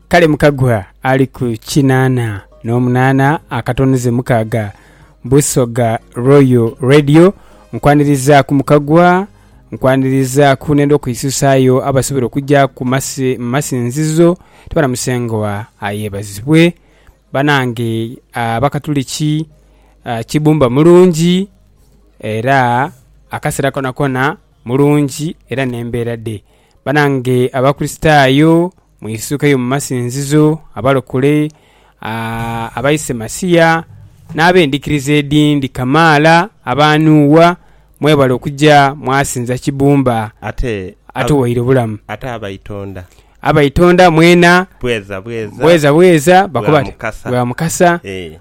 Kale Mukagwa ali ku kinaana n'omunaana akatono ze mukaaga Busoga Royal Radio. Nkwaniriza ku Mukagwa, nkwaniriza ku nenda okwisusaayo abasobola okujja ku masi, masinzizo tubana Musengwa ayebazibwe banange abakatuliki ah, Kibumba mulungi era akasera konakona mulungi era n'embeera dhe. Banange Abakristaayo, mwisukeyo mu masinzizo, abalokole, abaise Masiya, n'ab'endhikiriza edhindi kamaala aba Nuuwa. Mwebale okuja mwasinza Kibumba Ate atuwaire obulamu. Ate abaitonda. Abaitonda mwena. Bweza bweza. Bweza bweza. Bakoba bati, Bwa Mukasa. Bwa Mukasa. Ee.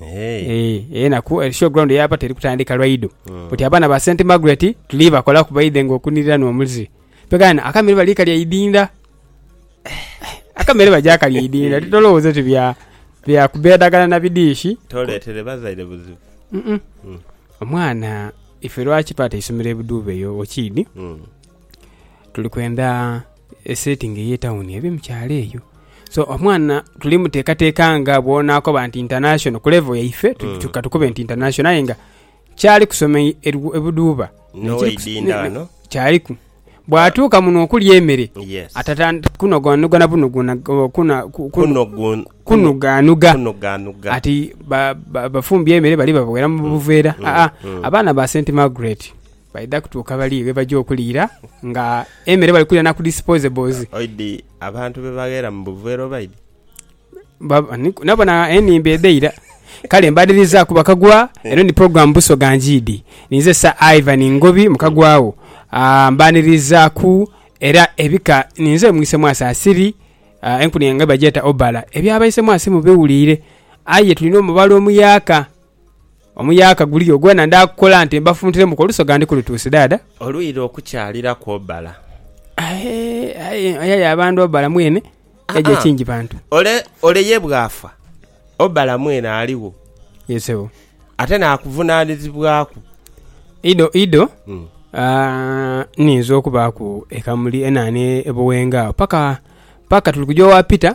Eeh eyo enaku eh, show ground yaba teri kutandika lwaido mm. oti abaana ba St Margaret tuli bakola kubaidhe nga okunirira n'omulzi pegana akamere bali kalya idinda akamere baja kalya idinda titolowooza ti bya bya kubedagala na bidiishi toletere bazaire buzibu mm -mm. Mm. omwana ife lwaki pata isomero ebuduuba eyo okiidi mm. Tuli kwenda esetingi ey'etawuni ebe mu kyalo eyo. So omwana tuli muteekateeka nga bw'onaakoba nti intanashono, ku levo yaife katukube nti intanashono aye nga kyali kusoma e Buduuba. Kyaliku. Bw'atuuka muno okulya emere atatandika kunoganogana kunugaanuga ati bafumbye emere bali babaghera mu buveera. Aa, abaana ba St Margaret. Baidha kutuuka bali ghe baja okuliira nga emere bali kulira na ku disposables. Oidhi abantu be bagheera mu buveera obaidhi? Nabwo na enimba edheira. Kale mbade nizaaku bakagwa eno ni program Busoga Njiidi. Ninze Sir Ivan Ngobi Mukagwagho. Mbanirizaku era ebika ninze mwise mwasi asiri enkuni yange bagyeta Obala. Ebyabaise mwasi mubiwuliire aye tulina omubala omuyaaka. Omuyaaka guliyo gwona ndaakukola nti mbafuntiremuku olusoga ndikulutuuse dhaadha. Olwira okukyalira kwobala. Aye, aye, aye y'abandu obala mwene yaja ekingi bantu. Ole, ole ye bw'afa, obala mwene aligho. Ye sebo. Ate n'akuvunaanizibwaku. Ido, ido, aah, nninza okubaaku ekamuli enaana e Buwenga agho paka, paka tuli kuja owa Peter.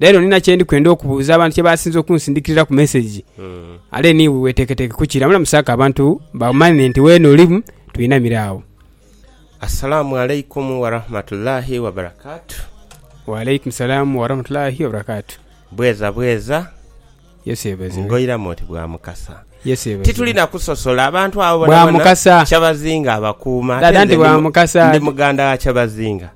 Leero nina kye ndi kwenda okubuuza abantu kye baasinze okunsindikiriraku mesegi. Are ni iwe weeteeketeeke kukira? Mulamusaako abantu bamanye nti weene olimu, twinamire agho. Assalamu alaikumu warahmatullahi wabarakatuh. Wa alaikumu salaamu warahmatullahi wabarakatuh. Bweza bweza. Yesu yebazibwe. Ngoiramu oti bwa Mukasa. Yesu yebazibwe. Tituli na kusosola, abantu abo Bwa bonabona Mukasa. Kyabazinga abakuuma. Dada ate nti nze bwa ndi mu- Mukasa. ndi muganda wa Kyabazinga.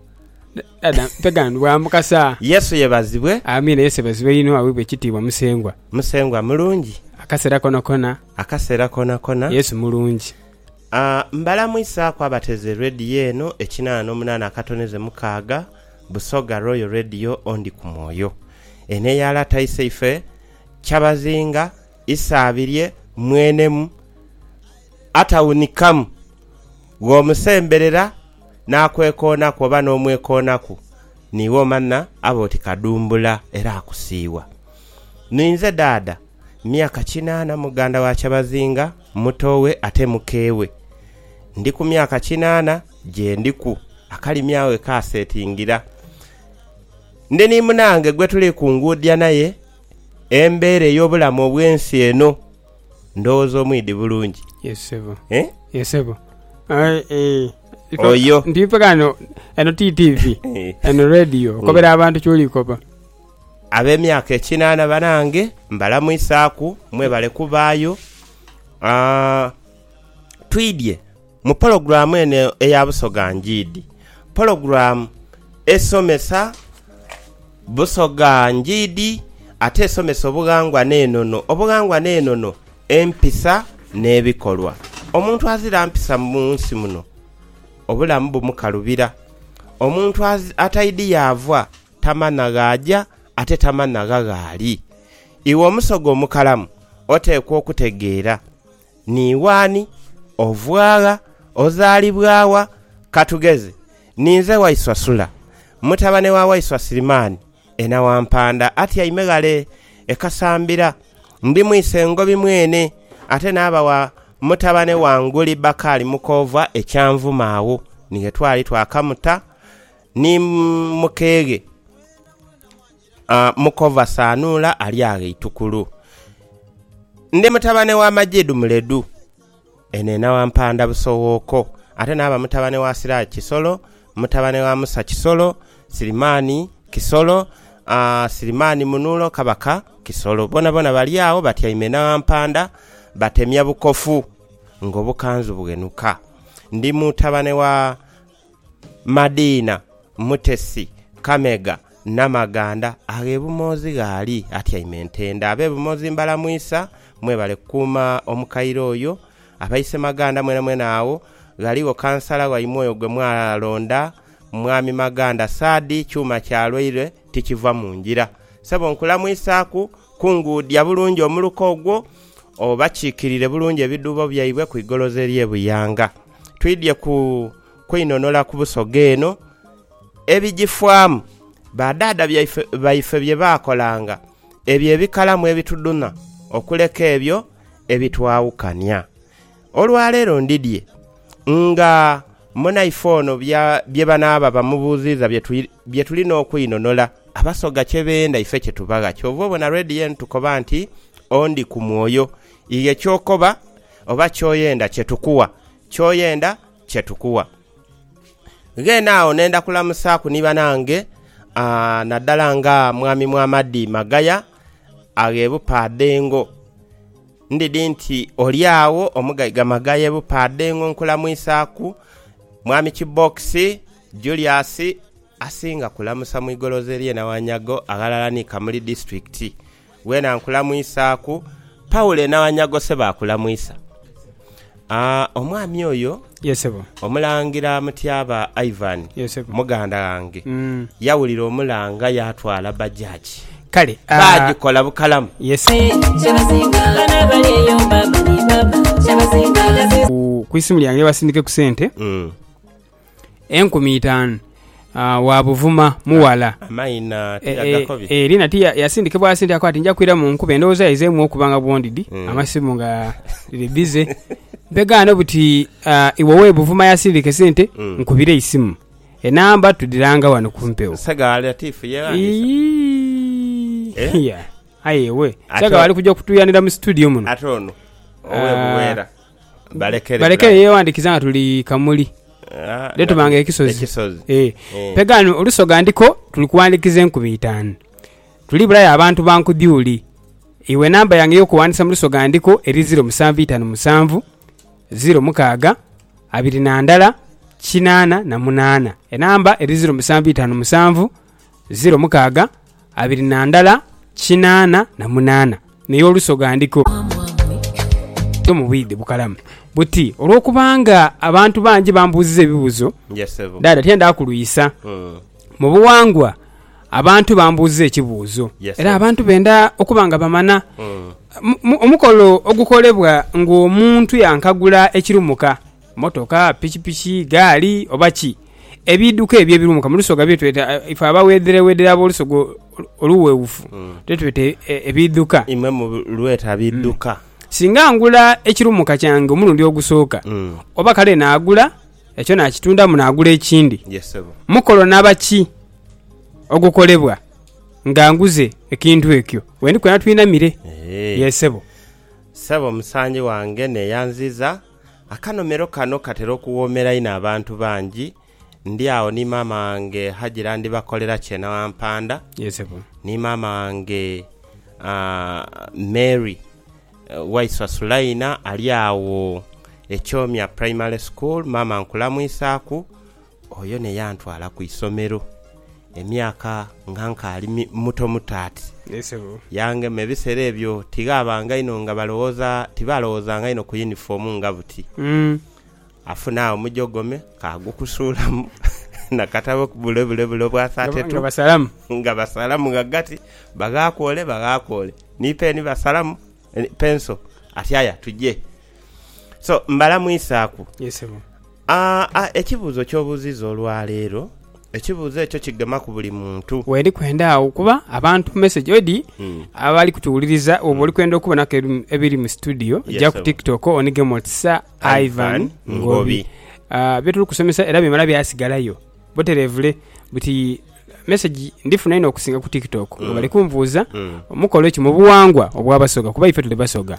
Yesu yebazibwe. Amiina Yesu yebazibwe inho awebwe ekitiibwa musengwa. Musengwa mulungi. Akasera kona kona. Akasera kona kona. Yesu mulungi. Mbalamwisaaku abateze Radio eno ekinana nomunana akatoneze mukaaga Busoga Royal Radio ondi ku mwoyo. Eno eya lata iseife Kyabazinga Isaabirye mwenemu atawunikamu. Gh'omusemberera n'akwekoonaku oba n'omwekoonaku, niiwe omanha aba oti kadumbula era akusiiwa. Ninze daada, myaka kinaana, muganda wa kyabazinga, mutoowe ate mukeewe. Ndi ku myaka kinaana gye ndiku akalimi agho ghe kaasetingira. Ndi ni munange gwe tuli kunguudhia naye embeera ey'obulamu obw'ensi eno. Ndhoghoza omwidhi bulungi. Yes sebo. Eh? Yes sebo. Aye eh. Iko- Oyo. Ndi ife kano eno ti TV. Eh. Eno radio. Okobera abantu kyoli koba. ab'emyaka ekinana banange mbalamwisaku mwebale kubaayo Ah, twidye Mu pologulaamu eno eya Busoga Ndyiidi, pologulaamu esomesa Busoga Ndyiidi ate esomesa obughangwa n'enono, obughangwa n'enono, empisa n'ebikolwa. Omuntu azira mpisa mu nsi muno obulamu bumukalubira. Omuntu ataidhi yaava tamanha ghaaja ate tamanha gha gh'ali. Iwe Omusoga omukalamu oteekwa okutegeera. Ni wani ova gha? Ozaalibwa wa? Ka tugeze, ninze waiswa Sula, mutabane wa waiswa Sirimani, ena wa mpanda, atyaime ghale e Kasambira. Ndi mwise Ngobi mwene, ate naaba wa mutabane wa Nguli Bakali mukoovwa e Kyanvuma. Agho ni ghe twali twakamuta ni mukeeghe. Mukova Sanuula ali agho eitukulu. Ndi mutabane wa Majidu Muledu, eno enawampanda Busowooko. Ate naaba mutabane wa Siraje Kisolo, mutabane wa Musa Kisolo, Sirimani Kisolo, Sirimani Munulo, Kabaka Kisolo. Boonaboona bali agho batyaime enawampanda batemya bukofu ng'obukanzu bughenuka. Ndi mutabane wa Madiina, Mutesi, Kamega, Namaganda agh'e Bumoozi gh'ali atyaime ntende. Ab'e Bumoozi mbalamwisa, mwebale kukuuma omukaire oyo. Aba Isemaganda mwenamwena agho ghaligho kansala waimwe oyo gwe mwalonda, Mwami Maganda Saadi. Kyuma kya lwaire tikiva mu ngira. Sebo nkulamwisaaku, kunguudhia bulungi omuluka ogwo, obakiikirire bulungi ebidhuubo byaibwe ku igolozi ery'e Buyanga. twidhie ku kweinhonhola ku busoga eno, ebigifaamu, badhaadha baife bye baakolanga, ebyo ebikalamu ebitudhunha okuleka ebyo ebitwaawukania. Olwaleero ndidhie nga munaife ono bye banaaba bamubuuziiza bye tulina okweinhonhola. Abasoga kye beenda ife kye tubagha. Kyova obona lwedhi yeenu tukoba nti, Ondi ku mwoyo. Ighe ky'okoba Oba ky'oyenda kye tukuwa. Ky'oyenda kye tukuwa. Ghene agho nenda kulamusaaku ni banange naddala nga Mwami Muhammadi Magaya aghe Bupaadhengo. Ndidhi nti oli agho Omugaiga Magaya e Bupaadhengo nkulamwisaaku. Mwami Kibbokisi, Julius asinga kulamusa mu igoloze ly'e Nawanyagho aghalala ni Kamuli disiturikiti. wena nkulamwisaaku. Paule na Wanyagose baakulamwisa. Aa, omwami oyo, Ye sebo. Omulangira Mutyaba Ivan, Ye sebo. muganda ghange, Mm. yawulira omulanga yaatwala bajaji. Kale, ah, Baagikola bukalamu. ye se- ku- ku isimu lyange basindike ku sente Mm. enkumi itaanu wa buvuma mughala. Eri nati yasindikibwa asindikaku ati nja kwira mu nkuba endowooza ye ezeemu okuba nga bwondidi mm. amasimu nga riri bize mpegaano buti iwe owe buvuma yasindika esente mm. nkubire eisimu enamba tudiranga wano kumpewo eh? ayewe saga wali kuja kutuyanira mu studio muno ate ono owe buweera Balekere yewandikiza nga tuli kamuli netuba nga ekisozi pega ghano olusoga ndiko tuli kuwandikiza enkumi itanu tuli bulayo abantu bankudyuli iwe namba yange eyokuwandisa mulusoga ndiko eri ziro musanvu itanu musanvu ziro mukaga abiri nandala kinana na munana enamba eri ziro musanvu itanu musanvu ziro mukaaga abiri na ndala kinaana na munaana, n'ey'oluso ghandiko yo mu bwidhi bukalamu buti olw'okubanga abantu bangi bambuuziza ebibuzo dhaadha tiyendha kulwisa. Mu buwangwa abantu bambuuziza ekibuuzo era abantu benda okuba nga bamana omukolo ogukolebwa ng'omuntu yankagula ekirumuka. Motoka, pikipiki, gaali oba ki. Ebiidhuka ebyo ebiruumuka mu lusoga bye tweta, ife abawedherewedhere ab'olusoga oluwewufu bye tweta ebiidhuka. Imwe mulweta biidhuka. Singa ngula ekiruumuka kyange omulundi ogusooka, oba kale naagula ekyo naakitundamu naagula ekindi, mukolo naba ki ogukolebwa nga nguze ekintu ekyo? We ndi kwena twinamire. Yee, sebo. Sebo, musangi wange, neyanziza. Akanomero kano katera okuwoomera inho abantu bangi. Ndi agho ni maama wange Hajira Ndibakolera Kyenawampanda ni maama wange Mary Waiswa Sulaina ali agho e Kyomya Primary School. Maama nkulamwisaaku. Oyo ne yantwala ku isomero emyaka nga nkaali mutomuto ati. Yee sebo. Yangema. Ebisera ebyo tighabanga inho nga balowooza, tibalowoozanga inho ku yunifoomu nga buti. Afuna omujogome kaagukusuulamu na katabo bule bule bule obwasaatetu. Nga basalamu. Nga basalamu ghagati, baghaaku ole, baghaaku ole. Ni peeni basalamu. Eni pencil ati aya tuje so mbala mwisaku aa ekibuzo kyo buziza olwalero ekibuzo ekyo kigemaku buli muntu. Weri kwenda agho kuba abantu message odi abali kutuwuliriza bwoba oli kwenda okubonaku ebiri mu studio ja ku tiktok onigemu oti Sir Ivan Ngobi. Bye tuli kusomesa era bimala byasigalayo. buterevule buti message ndifuna inho okusinga ku tiktok nga bali kunvuuza omukola ekyo mubuwangwa obwa basoga kuba ife tuli basoga.